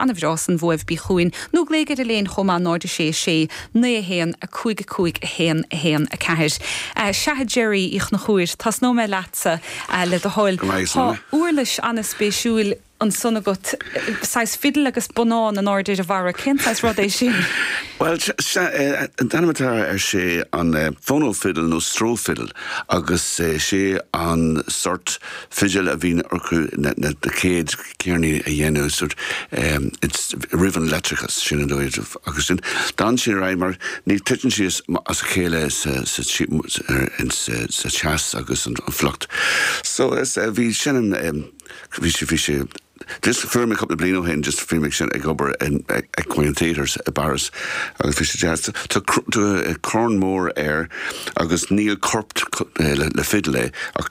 Ana bhreá san bhuaibh bí chugainn nó glaoigh ar Elaine chomh maith 0 6 6, 9 1, 5 5, 1 1, 4. Sea, a Gerry Uí Chonchúir, tosnóidh mé leatsa, le do thoil. Tá uirlis ana-spéisiúil ansan agat, saghas fiddle agus bonnán in airde ar a bharra. Cén saghas rud é sin? Bhuel, sea, an t-ainm atá air sé an phono fiddle nó Stroh fiddle agus sé an sort fidil a bhíonn orthu na chéad, ceirníní a dhéanamh is roimh an leictreachas, sin an uair, agus sin, d'fhan siad ar aghaidh mar ní, titeann siad as a chéile sa teas agus an fuacht. So is, bhí sin an, bhí sé, bhí sé, just fuair mé cúpla bliain ó shin, just bhí mé ansin ag obair in Equine Theatre i bPáras agus bhí sé deas, tá corn mór air agus níl corp le fidil é ach.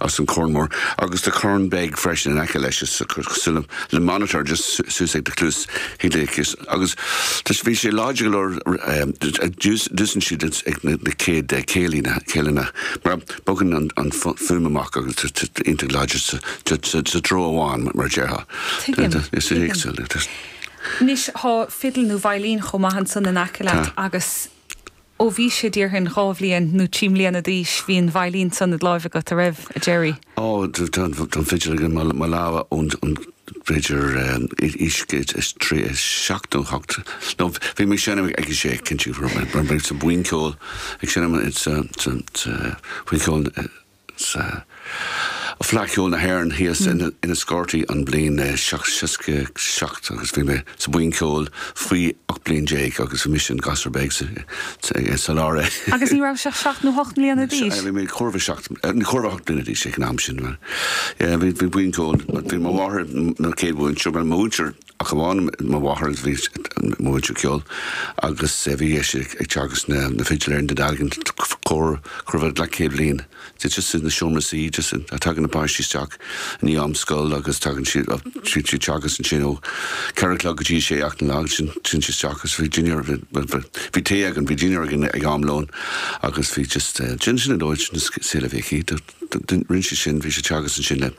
as an corn mór, agus tá corn beag freisin in aice leis is cosúil le le monitor just suas ag do cluas chlé agus agus tá sé bhí sé láidir go leor d'úsáid siad ag na chéad céilí na céileanna mar bogann an fuaim amach agus tá iontach láidir sa treo amháin mar a déarfá. Tuigim, tuigim. Anois tá fidil nó veidhlín chomh maith ansan in aice leat agus Ó bhís-se, déarfainn, dhá bhliain nó trí mbliana d'aois, bhí an veidhlín san id láimh agat, an raibh, a Gerry? Ó, tá an fidil ag in mo lámha ón, b'fhéidir, aois a trí, a seacht nó a hocht. No, bhí mé ag seinm ag a sé, cinnte, raibh mé sa bhuíon ceoil, ag seinm sa bhuíon cheoil na. Sea. Fleadh cheoil na hÉireann thíos in Enniscorthy an bhliain seacht seasca seacht agus bhí mé sa bhuíon cheoil faoi ocht bliain déag agus bhí mise an gasúr beag sa lár. Agus ní rabhais ach seacht nó hocht mbliana d'aois? Bhí mé corradh seacht, nó corradh ocht mbliana d'aois ag an am sin. Bhí buíon cheoil, bhí mo mháthair na chéad bhuíon cheoil, mo mhuintir, ach amháin mo mháthair bhí múinteoir ceoil agus bhí sí ag teagasc na na fidil i nDún Dealgan chóir chóir a bheith leathchéad bliain de just in the seomra suí just in a tagann na páistí isteach i ndiaidh am scoil agus tagann siad siad siad teagasc ansin ó ceathair a chlog go dtí sé a chlog sin sin siad isteach agus bhí dinnéar bhí tae againn bhí dinnéar againn ag am lóin agus bhí just sin sin an dóigh sin an saol a bhí aici Rinne sé sin, bhí sé ag teagasc ansin le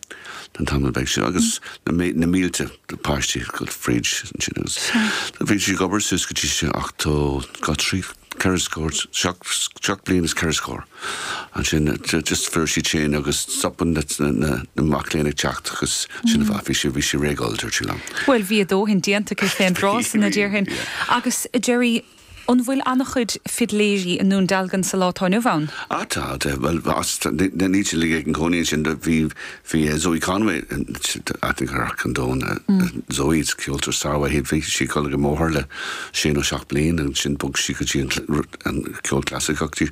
an t-am a bheith ansin agus na mílte páistí fríd ansin agus bhí sé ag obair suas go dtí sé ochtó, dhá, trí, ceithre scór, seacht bliain is ceithre scór ansin just fuair sí tinn agus stopann na mac léinn ag teacht agus sin an fáth, bhí sé, bhí sé réidh dul, dúirt sé liom. Bhuel, bhí a dóthain déanta aici fén tráth san, a déarfainn, agus Gerry, An bhfuil an-chuid fidléirí i nDún Dealgan sa lá atá inniu ann? Ah tá, tá, bhuel, níl siad uilig ina gcónaí ansin, do bhí, bhí Zoë Conway, aithne ag achan duine ar Zoë, is ceoltóir sármhaith í, bhí sí ag dul chuig mo mháthair le sé nó seacht mbliain, ansin bhog sí go dtí an ceol clasaiceach,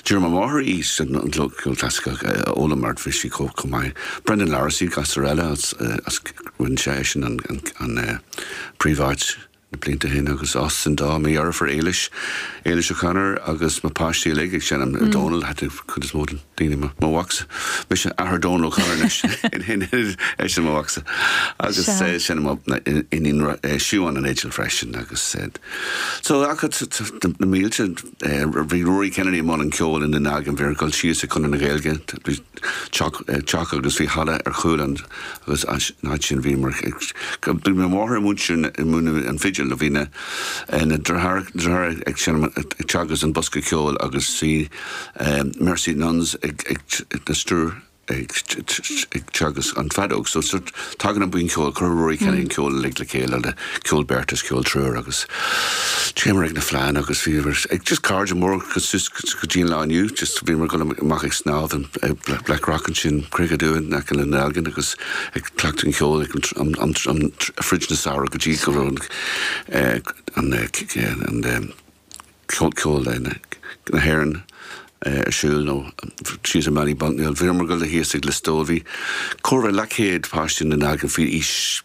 d'iarr mo mháthair í sin, an ceol clasaiceach a fhoghlaim mar bhí sí chomh, chomh maith. Brendan Larrissey, gasúr eile as, as, rinne sé, eisean an, an, an, eh, príomháit. Na blianta ó shin agus as sin dó, mo dheirfiúr Éilis, Éilis O'Connor, agus mo páistí uilig ag seinm Dónal, aithníonn cuid is mó de na daoine mo mhacsa. Mise athair Dhónail O'Connor anois, ní eisean mo mhacsa agus seinneann mo iníon Siubhán an fhidil freisin agus so ach na mílte. Bhí Rory Kennedy i mbun an cheoil i nDún Dealgan, bhíomar ag dul síos ag Conradh na Gaeilge, teach agus bhí halla ar chúl ann agus as an áit sin bhíomar ag, bhí mo mháthair ag múineadh, ag múineadh an fidil, bhí na deartháireacha ag seinm, ag teagasc an bosca ceoil agus bhí Mercy Nuns ah na siúracha ag teagasc an feadóg so tagann an buíon ceoil chuir Rory Kennedy an ceol uilig le chéile le ceol beirte is ceol triúir agus téamar ag na fleánna agus bhíomar ag just cairde móra suas go dtí an lá inniu, just bhíomar ag dul amach ag snámh in Blackrock ansin, Creagacha Dubha in aice le Dún Dealgan agus ag cleachtadh an cheoil fríd an samhradh go dtí go raibh Fleadh Cheoil na hÉireann ar siúl nó síos i Mainistir na Búille. Bhíomar ag dul thíos ag Lios Tuathail, bhí corradh le céad páiste i nDún Dealgan faoi aois